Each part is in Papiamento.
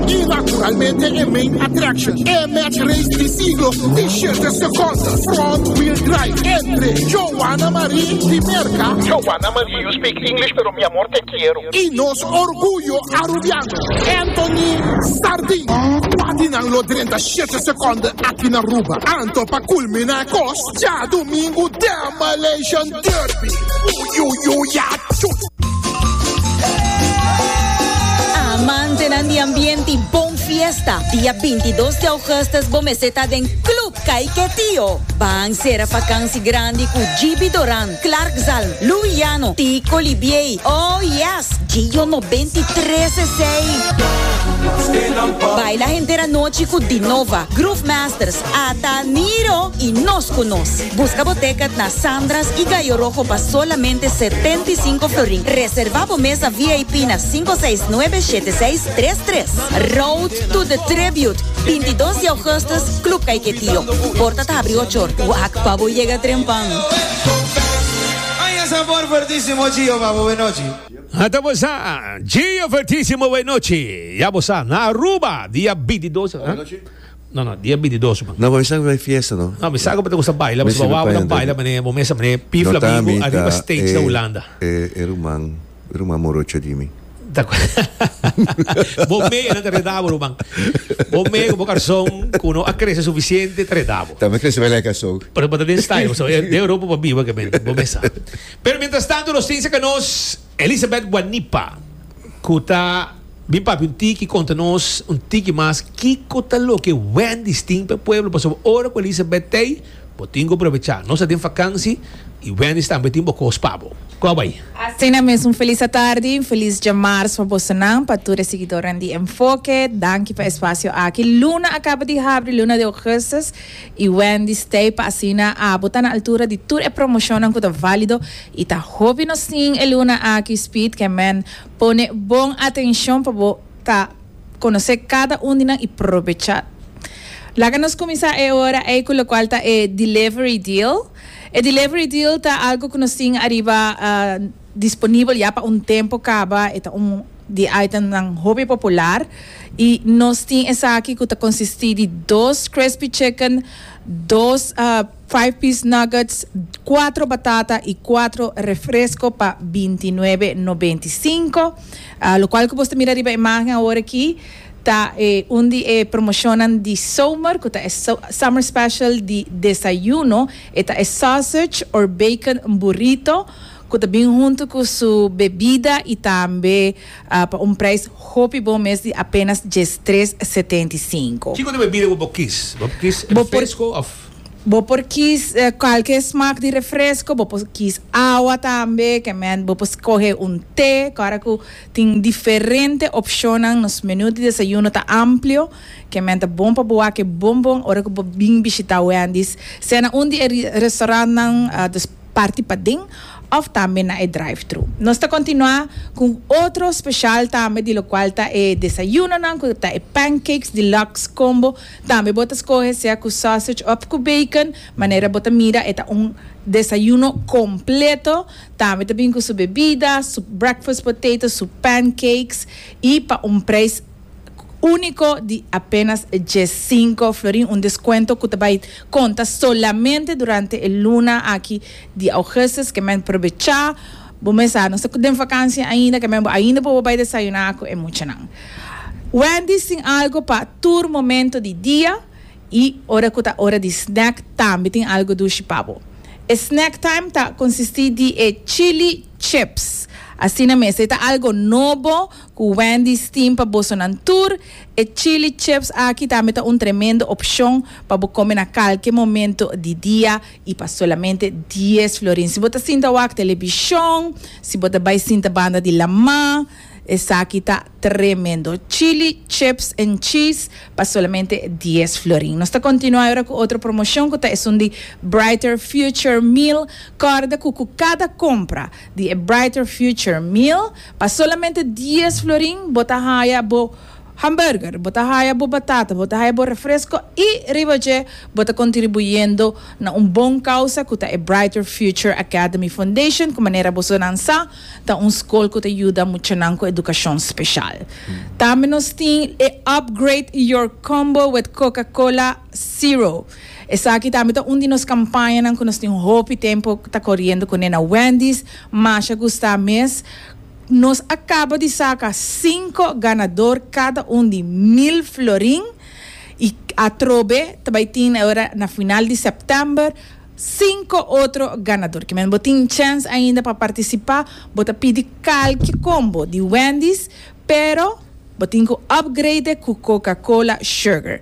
Y naturalmente e main attraction E match race di siglo di siete seconden front wheel drive entre Joanna Marie di Merca Joanna Marie you speak English pero mi amor te quiero. Y nos orguyo Arubiano Anthony Sardin Patinan lo drenta siete seconden aki na Aruba Anto pa culmina e cos djadomingo den Malaysian Amantenan di ambiente bon fiesta. Dia bintidos di augustus bo mester ta den Club Kaiketio. Ban sera fakansi grandi ku GB Doran, Clark Zalm, Lou Yano, Tico Libiey, oh yes! Gio Nobenti Tres Esei. Baila henter anochi ku Dinova, Groove Masters, A ta Niro y nos cu nos. Busca bo tecket na Sandra's y Gallo Rojo pa solamente setenta y cinco florin. Reserva bo mesa VIP na cinco seis nuebe shete seis tres tres. Road to the Tribute, bintidos di augustus, Club Caiquetío. Porta ta habri ocho or. Wak pa bo yega trempan. A ta bo sa, Gio Fertisimo Wenochi. Ya bo sa, na Aruba, dia bintidos. No no dia bintidos man. No bo mi sa ku ta bay fiesta no. No mi sa ku bo ta kusa baila pasobra bo wou bo ta baila mane bo mester mane pi flamingo ariba stage na Hulanda. No ta mi ta e ruman e ruman morocho di mi. Bo mei nan ta reda bo ruman bo mei ku bo karson ku no a krese sufisiente ta reda bo. Ta mi krese lek a so. Pero bo ta den style pasobra den ropa bo biba kemente bo mi sa. Pero mientras tanto nos tin sa ka nos. Elizabeth Guanipa, cu ta bin papia un tiki, conta nos un tiki mas kico ta loke Wendy's tin p'e pueblo, pasobra ora cu Elizabeth t'ey, bo tin cu aprovecha. Nos ta den vakansi y Wendy's tambe tin bo cos pa bo. Cua bay. Asina mes, un felis atardi y un felis Djamarz pa bosonan, pa tur e siguidornan di Enfoke. Danki pa e espacio aki. Luna a caba di habri, luna di augustus, y Wendy's t'ey pa asina abo ta na altura di tur e promocionnan cu ta valido. I ta hopi nosin e luna aki Speed ke men pone bon atenshon pa bo ta konosé kada un di nan i probecha. Laga nos kuminsá e ora ei ku lokual ta e delivery deal. E delivery deal ta algu ku nos tin ariba disponibel ya pa un tempu kaba. E ta un di e itemnan hopi popular. I nos tin esaki ku ta konsistí di dos crispy chicken, dos. Five piece nuggets, cuatro batata y cuatro refresco pa binti nuebe nobenta y cinco. Ah, lo cual cu bos ta mira riba e imagen awor aki ta e un di e promocionnan di somer cu ta e so, summer special di desayuno. E ta e sausage or bacon burrito cu ta bin hunto cu su bebida y tambe ah, pa un prijs hopi bon mes di apenas diestres setenta y cinco. Kico di bebida cu bo kis? Bo kis Bo por. refresco of. Bo por kies cualkier smaak di refresco, bo por kies awa tambe, kement bo por scohe un te, ora cu tin diferente opcionnan, nos menu di desayuno ta amplio, kement ta bon pa bo wake bon bon ora cu bo bin bishita Wendy's, sea na un di e restaurantnan dus parti paden of tambe na e drive-thru. Nos ta continua cu otro special tambe di locual ta e desayunonan cu ta e Pancakes Deluxe Combo, Tambe bo ta skohe sea ku sausage òf ku bacon, manera bo ta mira e ta un desayuno kompleto. Tambe ta bin ku su bebida, su breakfast potato, su pancakes i pa un preis úniko di apenas diesinko florin, un deskuento ku ta bai konta solamente durante e luna aki di Augustus, ke men probechá. Bo mes sa, nos ta den vakansia ainda, kember bo ainda por bo bai desayuná ku e muchanan. Wendy's tin algu pa tur momento di dia i ora ku ta ora di snack tambe tin algu dushi pa bo. E snack time ta konsistí di e chili chips. Asina mes, ta e ta algu nobo ku Wendy's tin pa bosonan tur. E chili chips aki tambe ta un tremendo opshon pa bo kome na kalke momento di dia. I pa solamente dies florin. Si bo ta sinta wak telebishon, si bo ta bai sinta banda di lamá, esaki ta tremendo. Chili, chips en cheese pa solamente dies florin. Nos ta kontinuá e ora ku otro promoshon ku ta esun di Brighter Future Meal. Kòrda ku ku kada kompra di e Brighter Future Meal, pa solamente dies florin bo ta haya bo. hamburger, bo ta haya bo batata, bo ta haya bo refresco y riba dje bo ta contribuyendo na un bon causa cu ta e Brighter Future Academy Foundation cu manera bosonan sa ta un scol cu ta yuda muchanan cu educacion special. Tambe nos tin e Upgrade Your Combo with Coca-Cola Zero. Esaki tambe ta un di nos campañanan cu nos tin hopi tempo ta coriendo cune na Wendy's, masha gusta mes. Nos a caba di saca cinco ganador cada un di mil florin y atrobe ta bay tin ora na final di september cinco otro ganador. Kimen bo tin chens ainda pa participa bo ta pidi calki combo di Wendy's pero bo tin cu upgrade cu Coca Cola sugar,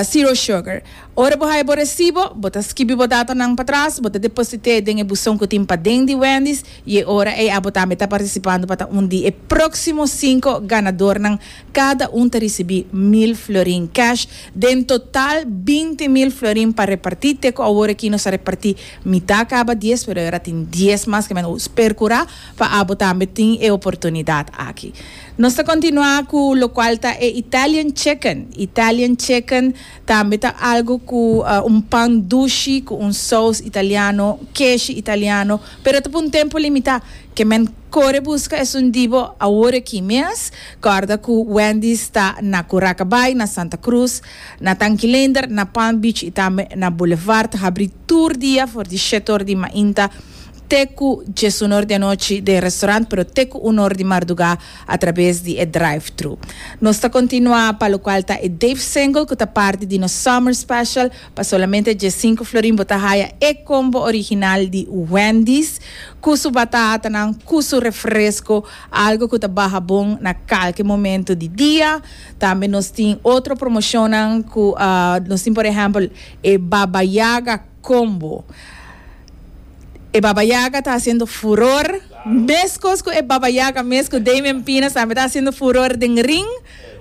zero sugar. Ora bo haña bo resibo, bo ta skibi bo datanan patras, bo ta deposit'é den e buson ku tin paden di Wendy's i e ora ei abo tambe ta partisipando pa ta un di e próksimo sinku ganadornan. Kada un ta risibí mil florin cash den total binti mil florin pa repartí. Te ku awor aki nos a repartí mitá kaba dies pero e ora tin dies mas kemen nos perkurá pa abo tambe tin e oportunidat aki. Nos ta kontinuá ku lokual ta e Italian Chicken. Italian Chicken. Tambe ta algu cu un pan dushi cu un sous italiano, keshi italiano, pero ta pa un tempo limita. Ke men core busca esun di bo awor aki mes. Corda cu Wendy's ta na Curacabai, na Santa Cruz, na Tanquilender, na Palm Beach y tambe na Boulevard. Ta habri tur dia for di shet ora di mainta te ku djes un or di anochi den restaurant pero te ku un or di mardugá atrabes di e drive-thru. Nos ta kontinuá pa lokual ta e Dave Single ku ta parti di nos Summer Special. Pa solamente djes sinku florin bo ta haya e combo original di Wendy's ku su batatanan ku su refresco, algo ku ta baha bon na kalke momento di dia. Tambe nos tin otro promocionnan ku nos tin por ehèmpel e Baba Yaga. Con bo. E Baba Yaga ta haciendo furor, mescos cu e Baba Yaga mes cu Damian Pina tambe ta haciendo furor den ring,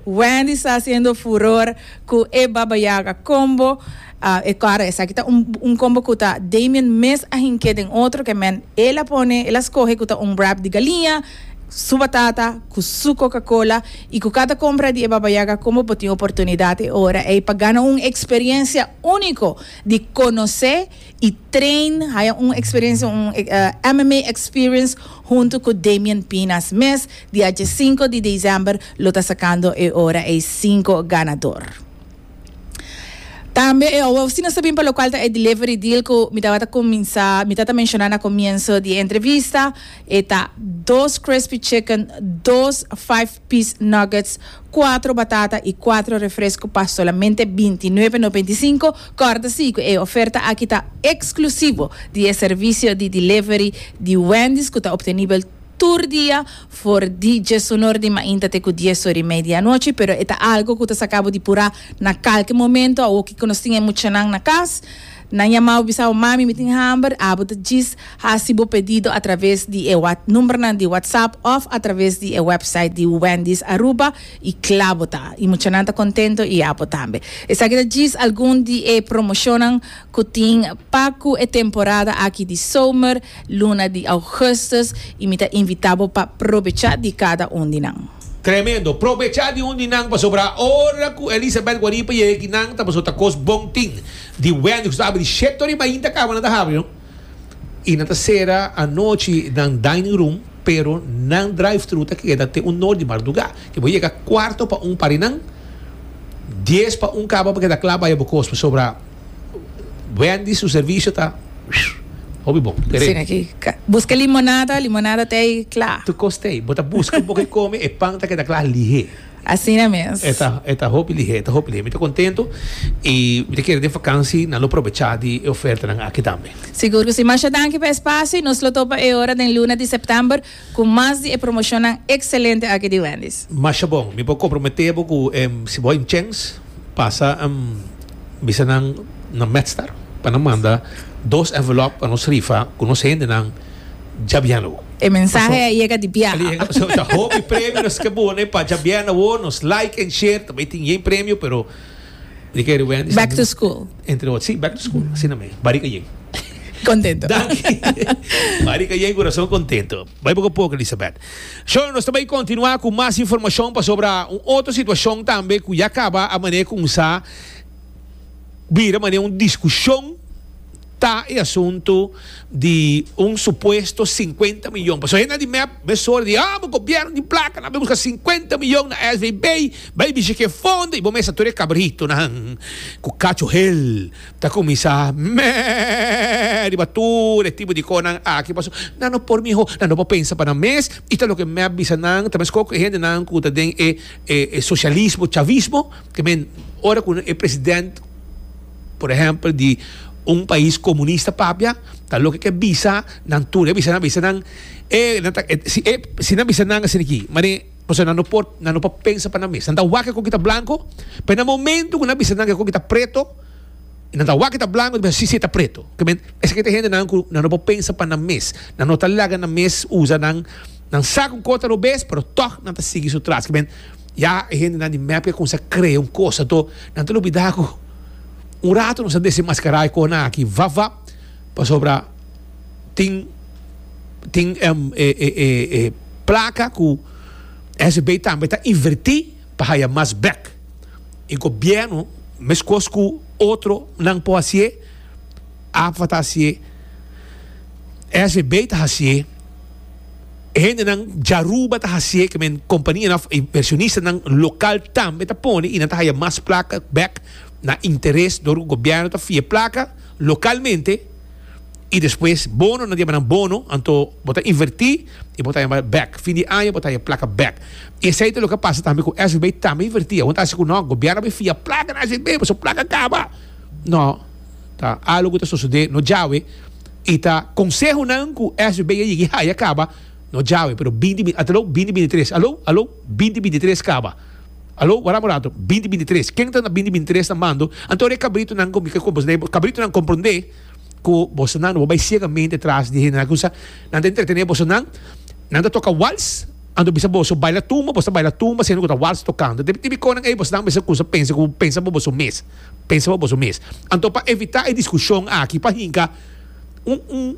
Wendy's ta haciendo furor cu e Baba Yaga combo, e claro esaki ta un un combo cu ta Damian mes a hinke den otro que men el a pone el a scoge cu ta un wrap di galiña, su batata cu su coca cola y cu cada compra di e Baba Yaga combo bo tin oportunidad e ora ey pa gana un experiencia unico. di conoce y train haya un experiencia un MMA experience hunto cu Damian Pinas mes dia dje cinco di december lo ta sacando e ora ey cinco ganador tambe e owe si no sa bin pa locual ta e delivery deal cu mi tabata cuminsa mi ta ta menciona na comienso di e entrevista e ta dos crispy chicken dos five pis nuggets, kuatro batata i kuatro refresku pa solamente binti nuebe nobenta i sinku. Kòrtasi ku e oferta aki ta eksklusivo di e servisio di delivery di Wendy's ku ta obtenibel tur dia for di djes onor di mainta te ku dies or i media anochi, pero e ta algu ku ta saka bo di purá na kalke momento. Awoki ku nos tin e muchanan na kas, Nan yamau bisau, Mami, mi tin hamber. Abo ta djis hasi bo pedido a traves di e numbernan di WhatsApp of a traves di e website di Wendy's Aruba y cla bo ta. Y muchanan ta contento y abo tambe. Esaki ta djis algun di e promocionnan cu tin pa cu e temporada aki di zomer, luna di augustus y mi ta invita bo pa probecha di cada un di nan. Tremendo! Probecha di un di nan pasobra ora cu Elisabeth Guaripa yega aki nan ta paso ta cos bon tin. Di wens nos ta abri di shete riba ainda kaba nan ta habri no y nan ta cera anochi nan dining room pero nan drive thru ta keda te un nor di marduga y bo yega cuarto pa un pari nan dies pa un kaba pa keda cla baya bo cos pasobra Wendy's su servicio ta hopi bon pere. Sin aki busca limonada limonada ta ey cla. Tu cos ta ey bo ta busca un poco di come e pan ta keda cla lihe. Asina mes. E ta, e ta hopi lihé, e ta hopi lihé. Mi ta contento y mi ta kere den vakansi nan lo probecha di e ofertanan aki tambe. Sigur cu si. Masha danki pa e spacio y nos lo topa e ora den luna di september cu mas di e promocionnan excelente aki di Wendy's. Masha bon. Mi por compromete bo cu si bo a tin chens, pasa bisa nan na Medstar pa nan manda dos envelop pa nos rifa cu nos hendenan. Djabiana wo. E mensahe a yega di biaha. Ta hopi premio nos ke bone pa djabiana wo nos like en share tambe tin yen premio pero di kere Wendy's back to school entre otro si back to school asina me barika yen contento danki barika yen corazon contento bay poco poco Elisabeth so nos ta bay continua cu mas informacion pasobra un otro situacion tambe cu ya caba a mane cunsa bira mane un discusion Ta e asuntu di un supuesto sinkuenta miyon. Pasobra henda di mep mes ora di, Amo gobièrnu di plaka, nan bai buska sinkuenta miyon na SVB, bai bishi ku e fondo i bo mester ta tur e kabritonan ku kachohel ta kuminsá mè riba tur e tipo di kosnan aki pasobra nan no por mihó, nan no por pensa pa nan mes i ta loke mep bisa nan ta meskos ku e hendenan ku ta den e sosialismo chavismo ke men ora ku e president. por ehempel di un pais comunista papia ta loke ke bisa nan tur e bisa nan bisa nan e nan ta si e si nan bisa nan asina aki manen pasobra nan no por nan no por pensa pa nan mes nan ta wak ekor kita blanco p'e na momento ku nan bisa nan ekor kita preto y nan ta wak kita blanco nan ta bisa si si e ta preto esaki ta hende nan ku nan no por pensa pa nan mes nan no ta laga nan mes usa nan nan sa ku kota robes pero tog nan ta sigui su tras kimen. Ya e hendenan di mep ke kumsa krea un kosa to, nan ta lubidá ku un ratu nos a desenmaskará e kohanan aki vap vap pasobra tin tin e plaka ku SB tambe ta invertí pa haya mas bèk i gobièrnu meskos ku otronan por hasié a fata hasié SB ta hasié. E hendenan di Aruba ta hasié ke men kompanianan òf invershonistanan lokal tambe ta pone i nan ta haya mas plaka bèk na interes dor ku gobièrnu ta fia plaka lokalmente i despues bono nan di bai nan bono anto bo ta invertí i bo ta haya bèk fin di aña bo ta haya plaka bèk i esei ta loke a pasa tambe ku SVB tambe invertí awor nan ta hasi ku nò gobièrnu a bai fia plaka na SVB pasobra plaka kaba nò. ta algo cu ta sosode no djawe y ta consehonan cu SB a yigi haya caba no djawe pero binti binti ata lo binti binti tres alo alo binti binti tres caba alo wara un rato binti binti tres ken ta na binti binti tres ta mando anto e cabritonan con mica con e cabritonan compronde cu boso nan no bo bay ciegamente tras di hende nan cu sa nan ta entretene boso nan nan ta toca wals anto bisa boso bayla tumba boso ta bayla tumba siendo cu ta wals tocando debe tin biconan ey boso nan mester cusa pensa cu pensa bo boso mes. Pensa pa boso mes. Anto pa evitá e diskushon aki pa hinka un un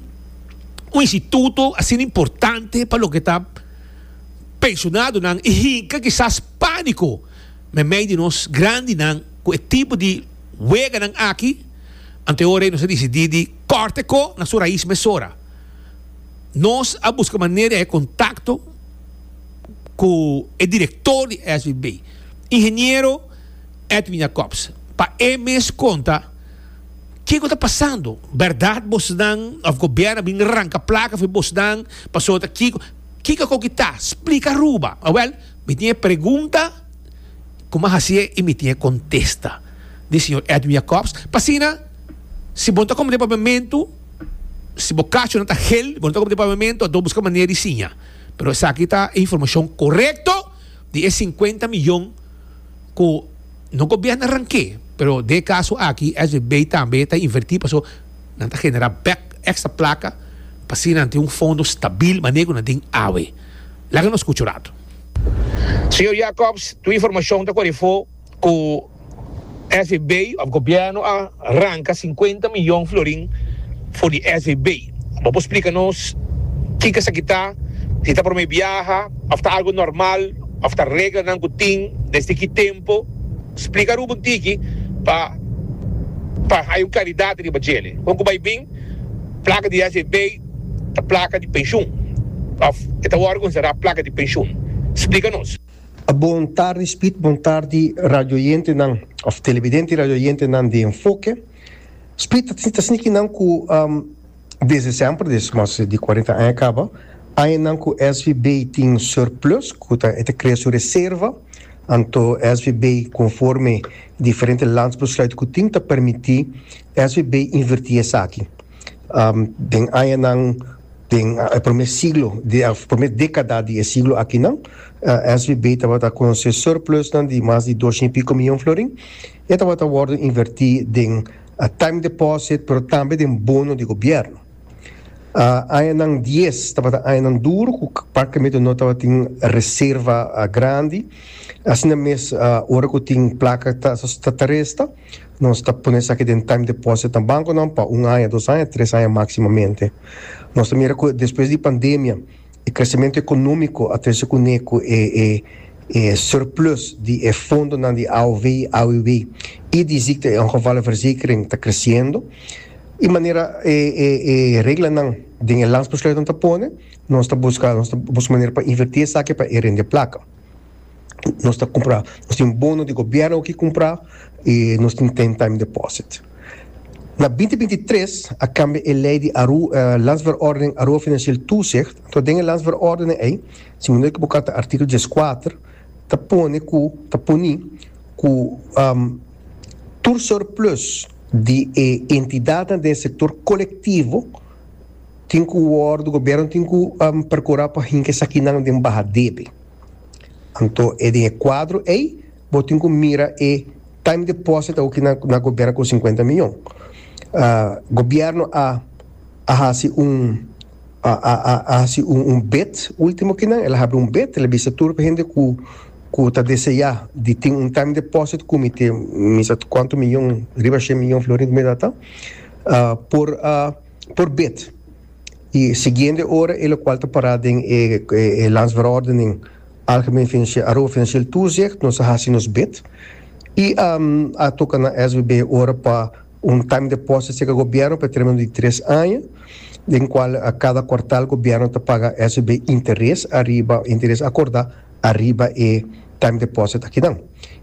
un instituto asina importante pa loke ta pensionadonan i hinka kisas pániko meimei di nos grandinan ku e tipo di weganan aki, anto e ora ei nos a disidí di kòrta ko na su rais mesora. Nos a buska manera di haña kontakto ku e direktor di SVB, ingeniero. Edwin Jacobs. Pa e mes konta, ke ku ta pasando? Bèrdat bosnan òf gobièrnu a bin ranka plaka for di bosnan pasobra kiko? Kiko a koki ta? Splika Aruba. Awèl, mi tin e pregunta ku mi a hasié i mi tin e kontesta, di señor Edwin Jacobs. Pa asina, si bo no ta kome den pabiamentu, si bo kachonan ta hel i bo no ta kome den pabiamentu, a dor buska manera di siña. Pero esaki ta e informashon korekto di e sinkuenta miyon. cu no gobierna ranke, pero den e caso aki SVB tambe ta inverti paso nan ta genera bek extra placa pa asina nan tin un fondo stabil manera cu nan tin awe. Laga nos scucha un rato. Señor Jacobs, tu informacion ta corefo cu. SEB of Gobierno a ranka sinkuenta miyon florin for di SEB. Bo por splika nos kiko esaki ta, si ta prome biaha of ta algo normal of ta reglanan ku tin, desde ki tempo? Splika Rubo un tiki pa pa haya un klaridat riba djele. Kon ku bai bin plaka di SEB ta plaka di penshun of e ta wòrdu konsiderá plaka di penshun? Splika nos. Bon tardi Spit, bon tardi radioyentenan of televidente y radioyentenan di Enfoke. Spit ta sniki nan cu desde semper, desde mas di cuarenta aña caba, añanan cu SVB tin surplus, cu ta e ta crea su reserva, anto SVB conforme diferente landsbesluit cu tin ta permiti SVB inverti esaki. Den añanan, den e prome siglo, di e prome dekada di e siglo akinan, SBB tabata ku un surplusnan di mas di dosha i piko miyon florin. E tabata wòrdu invertí den time deposit pero tambe den bono di gobièrnu. Añanan dies tabata añanan duru ku parkamentu no tabatin reserva grandi, asina mes ora ku tin plaka ta resta. Nos ta pone esaki den time deposit na banconan pa un aña, dos aña, tres aña maximamente. Nos ta mira cu despues di pandemia e crecemento economico a trece cune cu e e e surplus di e fondonan di AOW, AWB y di ziekte en gevallenverzekering ta creciendo y manera e e e reglanan den e Landsbesluitnan ta pone nos ta busca nos ta busca manera pa inverti esaki pa e rende placa. nos ta cumpra nos tin bono di gobierno aki cumpra y nos tin ten time deposit na binti binti tres a cambia e ley di Aruba landsverordening Aruba financieel toezicht entonces den e landsverordening ey si mi no equivoca ta artikel dies kuater ta pone cu ta poni cu tur surplus di e entidadnan den e sector colectivo tin cu wordo gobierno tin cu percura pa hinca esakinan den baha debe. Anto e den e kuadro ei bo tin ku mira e time deposit awo ku nan a goberna ku sinkuenta miyon. Gobièrnu a a hasi un a a a hasi un un bid último ku nan, el a habri un bid, el a bisa tur e hende ku ku ta deseá di tin un time deposit ku mi te mi sa kuantu miyon riba shia miyon florin ku mi ta dal ta por por bid. E siguiente ora e lokual ta pará den e e Landsverordening Algemeen Financieel Aruba Financieel Toezicht, nos a hasi nos bid i a a toka na SBB ora pa un time deposit aserka Gobièrnu pa e termino di tres aña, den kual kada kuartal Gobièrnu ta paga SBB interes ariba, interes akordá ariba e time deposit akinan.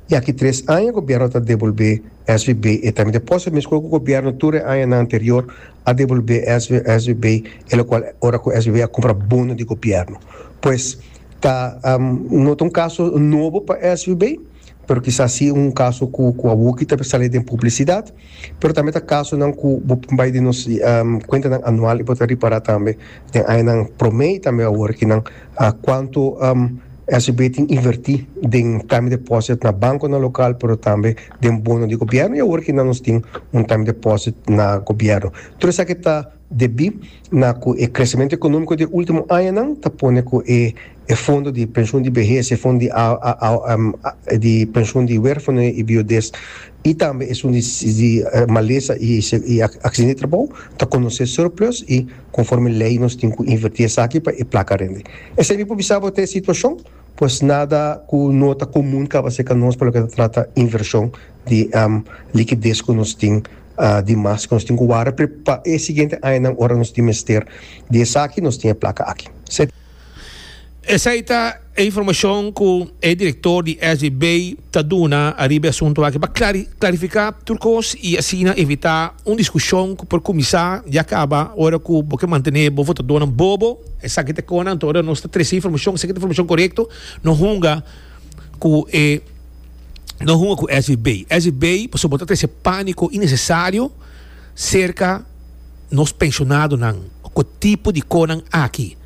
I aki tres aña gobierno ta devolbé SVB e time deposit mescua cu gobierno tur e añanan anterior a devolbé SVB e locual ora cu SVB a cumpra bono di gobierno. Pues ta no ta un caso nobo pa SVB pero kisas si un caso cu a wuki ta salí den publicidad. Pero tambe ta kasonan ku bo bai den nos kuentanan anual i bo ta ripará tambe den añanan promé i tambe awor aki nan kuantu SGB tin invertí den time deposit na bankonan lokal pero tambe den bono di gobièrnu i awor aki nan nos tin un time deposit na gobièrnu. Tur esaki ta. Debí na ku e kresementu ekonómiko di e último añanan ta pone ku e fondo di penshun di behes, e fondo di di penshun di wérfanoe i biudez i tambe esun di di malesa i i aksidan di trabou ta konosé surplus i konforme lei nos tin ku invertí esaki pa e plaka rende. Esei mi por bisa bo ta e situashon, pues nada ku no ta komun kaba se ka nos pa loke ta trata invershon di likidez ku nos tin di mas cu nos tin cu warda pero pa e siguiente añanan ora nos tin mester di esaki nos tin e placa aki. Esey ta e informacion cu e director di SBB ta duna ariba e asunto aki pa clarifica tur cos y asina evita un discusion cu por cuminsa y a caba ora cu bo ke mantene bo votadonan bobo. Esaki ta e con anto ora nos ta trece informacion, si esaki ta informacion corecto, no hunga cu e. no hunga ku esei bei. Esei bei pasobra bo ta trese pániko inesesario serka nos penshonadonan. Ku e tipo di konan aki,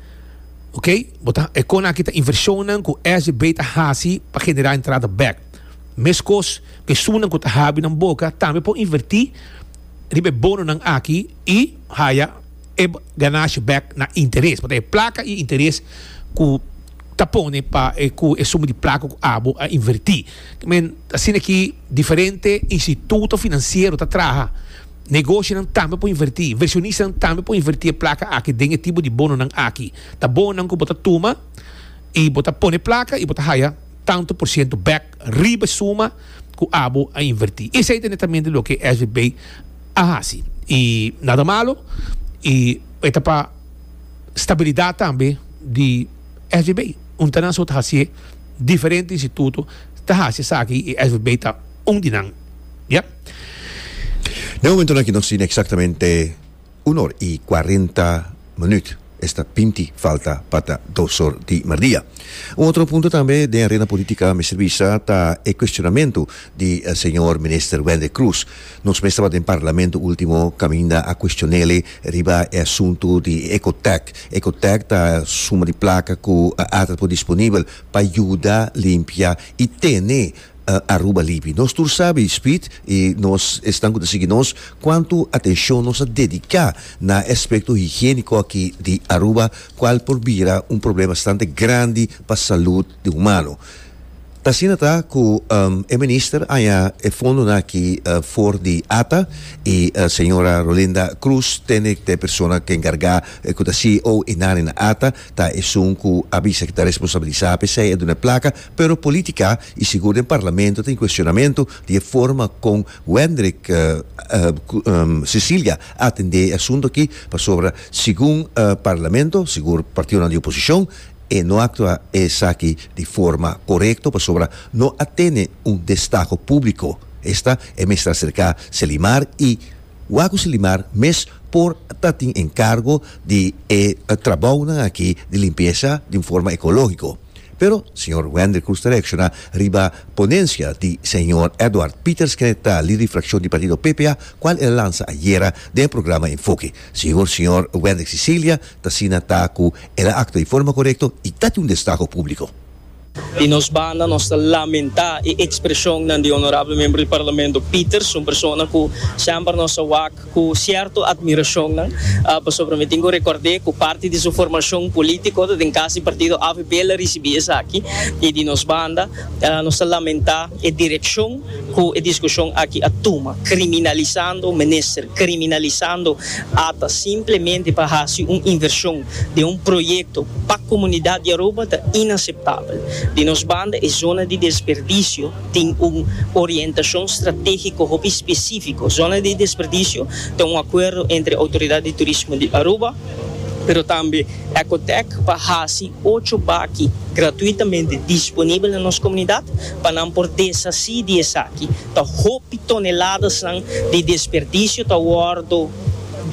ok? Bo ta, e konan aki ta invershonnan ku esei bei ta hasi pa generá entrada bèk. Meskos ku e sunan ku ta habi nan boka tambe por invertí riba e bononan aki i haya. e ganashi bek na interes pasobra e plaka i interes ku ta pone pa e ku e suma di plaka ku abo a inverti men asina ki diferente instituto finansiero ta traha negoshonan tambe por inverti invershonistanan tambe por inverti e plaka aki den e tipo di bononan aki ta bononan ku bo ta tuma i bo ta pone plaka i bo ta haya tantu por siento bek riba e suma cu abo a inverti. Esey ta netamente loke e SBB a haci. Y nada malo y e ta pa stabilidad tambe di SBB. Un ta nan so ta haci'e, diferente instituto ta haci esaki y SBB ta un di nan. Ya. Den momento nan aki nos tin exactamente. Un or i cuarenta minuut esta binti falta pa ta dos or di mardia. Un otro punto tambe den arena politica a mester bisa ta e cuestionamento di Señor Minister Wende Cruz. Nos mes taba den Parlamento ultimo caminda a cuestionele riba e asunto di Ecotec. Ecotec ta suma di placa cu ata por disponibel pa yuda limpia i tene Aruba libi. Nos tur sabi, Speed, i nos esnan ku ta sigui nos, kuantu atenshon nos a dediká na e aspekto higiéniko aki di Aruba, kual por bira un problema bastante grandi pa salud di humano. Ta asina ta ku e minister haña e fondonan aki for di ata i señora Rolinda Cruz Tenegh ta e persona ku enkargá, ku ta CEO e nani na ata, ta esun ku a bisa ku ta responsabilisá p'esei, e duna e plaka. pero politica y sigur den parlamento tin cuestionamento di e forma con Wendrick Cecilia a atende e asunto aki pasobra segun parlamento, sigur partidonan di oposicion, e no actua esaki di forma corecto pasobra no a tene un destaho publico. Esta e mester acerca Selimar y wak cu Selimar mes por ta tin encargo di e trabounan aki di limpieza di un forma ecologico. Pero señor Wendrik Koes ta reacciona riba ponencia di señor Edward Pieters kende ta lider di fraccion di partido PPA cual el a lansa ayera den e programa Enfoke. Sigur señor Wendrik Cecilia ta asina ta cu el a actua di forma corecto y dati un destaho publico. Di nos banda nos ta lamenta e expresionnan di honorable membro di Parlamento Pieters, un persona cu semper nos a wak Cu cierto admiracionnan, pasobra mi tin cu record'é cu parti di su formacion politico ta den cas di partido avp el a ricibi esaki y di nos banda nos ta lamenta e direccion cu e discusion aki a tuma, criminalisando minister, criminalisando ata simplemente pa haci un inversion den un proyecto pa comunidad di Aruba ta inaceptabel. Di nos banda e zona di desperdicio. Tin un orientashon stratégiko hopi spesífiko. Zona di Desperdisio ta un akuerdo entre Outoridat di Turismo di Aruba, pero tambe Ecotec pa hasi ocho baki gratuitamente disponibel na nos komunidat pa nan por deshasí di esaki. Ta hopi toneladas nan di desperdisio ta wòrdu.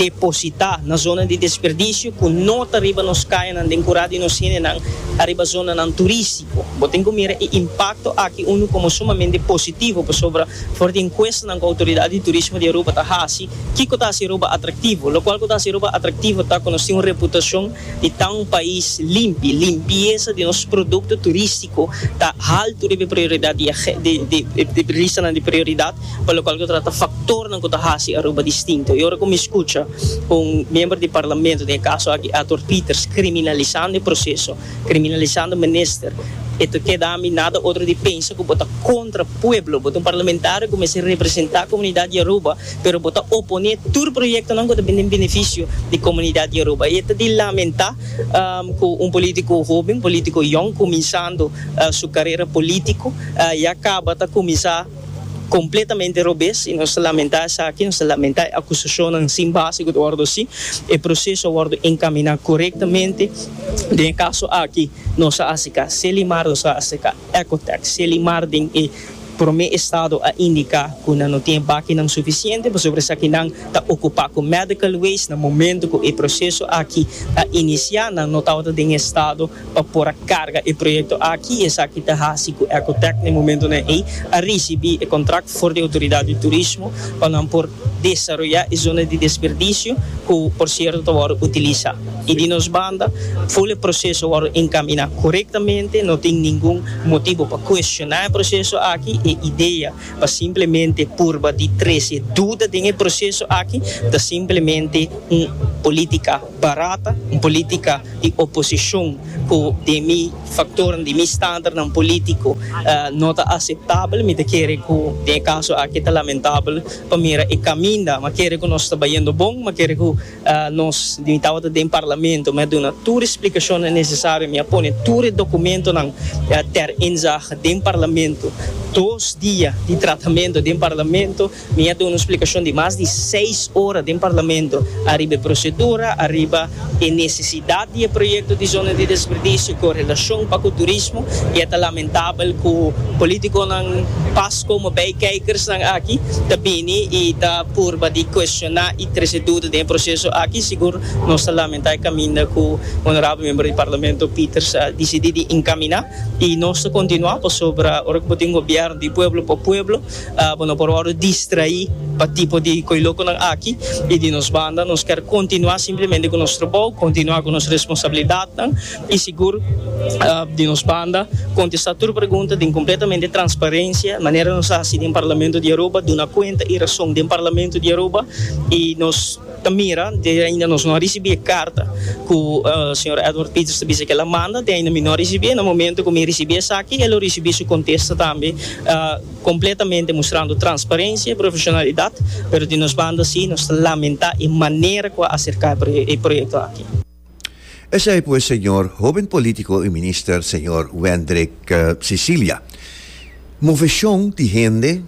depositá na zona di desperdisio ku no ta riba nos kayanan den kura di nos hendenan ariba zonanan turístiko. Bo tin ku mira e impakto aki unu komo sumamente positivo pasobra for di enkuestanan ku Outoridat di Turismo di Aruba ta hasi, kiko ta hasi Aruba atraktivo? Lokual ku ta hasi Aruba atraktivo ta ku nos tin un reputashon di ta un pais limpi. Limpiesa di nos produkto turístiko ta haltu riba e prioridad di e listanan di prioridad. pa lokual ku ta trata faktornan ku ta hasi Aruba distinto. I ora ku mi skucha un miembro di parlamento, den e kaso aki Arthur Peters, kriminalisando e proseso, kriminalisando minister, e ta keda mi nada otro di pensa ku bo ta kontra pueblo. Bo ta un parlamentario ku mester representá komunidat di Aruba, pero bo ta oponé tur proyektonan ku ta bin den benefisio di komunidat di Aruba. I e ta di lamentá ku un polítiko hóben, un polítiko yòn, kuminsando su karera polítiko, ya kaba ta kuminsá. Completamente robes y nos ta lamenta esaki, nos ta lamenta e acusacionnan sin base cu ta wordo haci. E proceso a wordo encamina corectamente. Den e caso aki nos a haci ca Selimar, nos a haci ca Ecotech. Selimar den e prome estado a indica cu nan no tin bakinan suficiente pasobra esaki nan ta ocupa cu medical waste. Na momento cu e proceso aki a inicia nan no tabata den e estado. pa por a carga e proyecto aki y esaki ta haci cu Ecotec na e momentonan ey a ricibi e contract for di Autoridad di Turismo pa nan por desaroya e zona di desperdicio cu por cierto ta wordo utiliza y di nos banda full e proceso wordo encamina corectamente no tin ningun motibo pa cuestiona e proceso aki e idea pa simplemente purba di trece duda den e proceso aki ta simplemente un politica. barata, un politica di oposicion cu den mi factornan, den mi standaardnan politico no ta aceptabel. Mi ta kere cu den e caso aki ta lamentabel pa mira e caminda. M'a kere cu nos ta bayendo bon, m'a kere cu nos, mi tabata den Parlamento, mi a duna tur e splicacionnan necesario, mi a pone tur e documentonan ter inzage den Parlamento, dos dia di tratamento den Parlamento. Mi a duna un splikashon di mas di seis ora den Parlamento ariba e prosedura, ariba e nesesidat di e proyekto di zona di desperdisio ku relashon pa ku turismo i a ta lamentabel ku politikonan pas komo bei keikersnan aki ta bini i ta purba di kuestioná i trese duda den e proseso aki. Sigur nos ta lamentá e kaminda ku Honorabel Membro di Parlamento Peters a disidí di enkaminá i nos ta kontinuá pasobra ora ku bo tin un gobièrnu di pueblo pa pueblo, Bo no por wòrdu distraí pa tipo di koilokonan aki. I di nos banda nos kèr kontinuá simplemente ku nos trabou, kontinuá ku nos responsabilidatnan i sigur di nos banda kontestá tur pregunta den kompletamente transparensia manera nos a hasi den Parlamento di Aruba, duna kuenta i rason den Parlamento di Aruba i nos. Ta mira te ainda nos no a ricibi e carta cu Sr. Edward Peters ta bisa cu el a manda, te ainda mi no a ricibi, na momento cu mi ricibi esaki e lo ricibi su contesta tambe completamente mustrando transparencia y profesionalidad, pero di nos banda si nos ta lamenta e manera cu a acerca e proyecto aki. Esei pues señor hoben politico y minister señor Wendrick Sicilia. Movecion di hende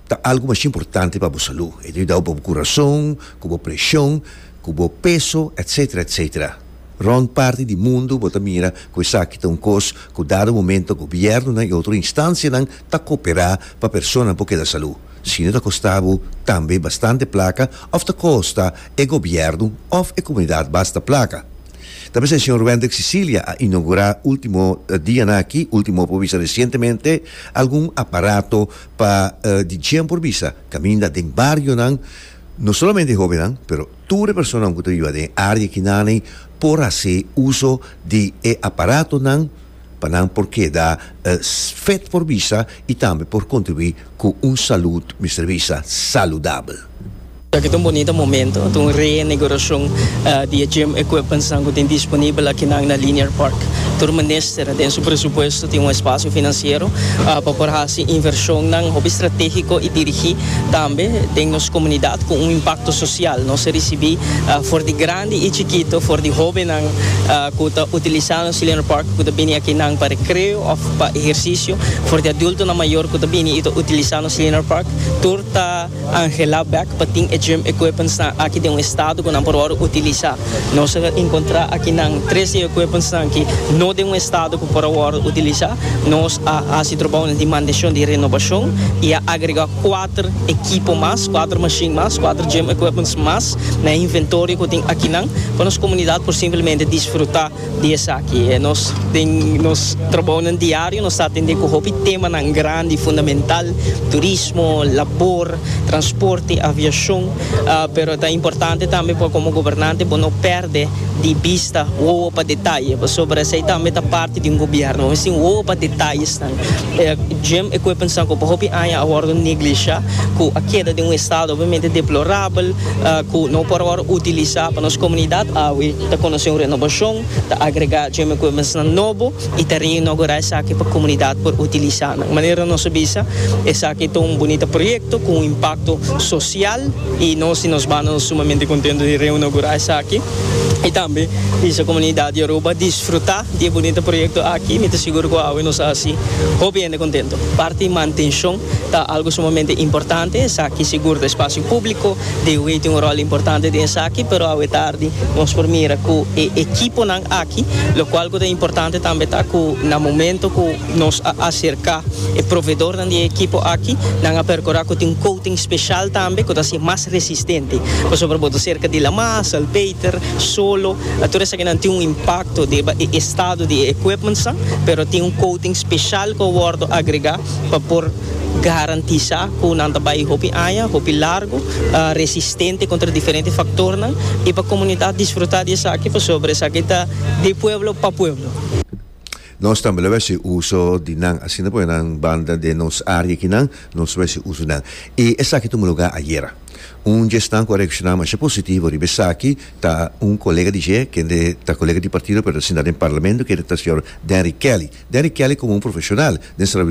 ta algo mas importante pa bo salu. E ta yudao pa bo curason, cu bo presion, cu bo peso etc. Etc. Rond parti di mundo bo ta mira cu esaki ta un cos cu dado momento gobiernonan y otro instancianan ta cooperá pa persona por keda salú, si no ta costá bo tambe bastante placa of ta costa e gobierno of e comunidad basta placa. Ta mester Señor Wendrick Sicilia a inaugurá ultimo dianan aki, ultimo por bisa recientemente, algun aparato pa di djen por bisa caminda den barionan, no solamente hobennan pero tur e personanan cu ta biba den área akinane por hacé uso di e aparatonan, pa nan por keda fit for bisa y tambe por contribui cu un salud mester bisa saludabel. Aki ta un bonita momento, ta un reiniguracion di e gym equipmentsnan cu tin disponibel akinan na Linear Park. Tur minister den su presupuesto tin un espacio financiero pa por haci inversionnan hopi strategico y dirigi tambe den nos comunidad cu un impacto social. Nos a ricibi for di grandi y chikito, for di hobennan cu ta utilisa. Chilean Republic ku ta bini aki nan pa rekreo òf pa ehersisio. For di adultonan mayor ku ta bini i ta utilisá nos Chilean Republic, tur ta anhelá bèk pa tin e gym equipmentsnan aki den un estado ku nan por wòrdu utilisá. Nos a enkontrá aki nan tres di e equipmentsnan ki no den un estado ku por a wòrdu utilisá. Nos a hasi trobounan di manteshon, di renobashon i a agregá kuater ekipo mas, kuater mashin mas, kuater gym equipments mas na e inventorio ku tin akinan pa nos komunidat por simplemente disfrutá. Di esaki e nos den nos trabounan diario nos ta atendé ku hopi temanan grandi fundamental, turismo, labor, transporte, aviashon, pero ta importante tambe pa komo gobernante bo no pèrdè di bista wowo pa detaye pasobra esei tambe ta parti di un gobièrnu. Bo mester tin wowo pa detayesnan. E gym equipmentsnan ku pa hopi aña a wòrdu neglishá, ku a keda den un estado obviamente deplorabel, ku no por awor utilisá pa nos komunidat awe. Ta konosé un renobashon, ta agregá gym equipmentsnan nobo i ta reinogurá esaki pa komunidat por utilisá nan. Manera nos a bisa, esaki ta un bunita proyekto ku un impakto sosial i nos di nos banda nos sumamente kontentu di reinogurá esaki i tambe bisa komunidat di Aruba disfrutá di e bunita proyekto aki. Mi ta sigur ku awe nos a hasi hopi hende kontentu. Parti mantenshon Ta algu sumamente importante esaki, sigur ta espasio públiko dewey tin un ròl importante den esaki, pero awe tardi nos por mira ku e ekiponan aki, lokual ku ta importante tambe ta ku na momento ku nos a aserká e provedornan di e ekipo aki nan a perkurá ku tin un kouting speshal tambe ku ta hasi e mas resistente, pasobra bo ta serka di laman, salpeiter, solo, tur esakinan tin un impakto riba e estado di e ekwipmentsnan, pero tin un kouting speshal ku a wòrdu agregá. pa por garantisá ku nan ta bai hopi aña, hopi largu, resistente kontra diferente faktornan i pa komunidat disfrutá di esaki pasobra esaki ta di pueblo pa pueblo. Nos tambe lo hasi uso di nan asina pue nan banda den nos área akinan nos lo hasi uso di nan i esaki tuma lugá ayera. Un djesnan ku a reakshoná masha positivo riba esaki ta un kolega di dje kende ta kolega di partido pero ta sentá den parlamento kende ta señor Denrick Kelly. Denrick Kelly komo un profeshonal den.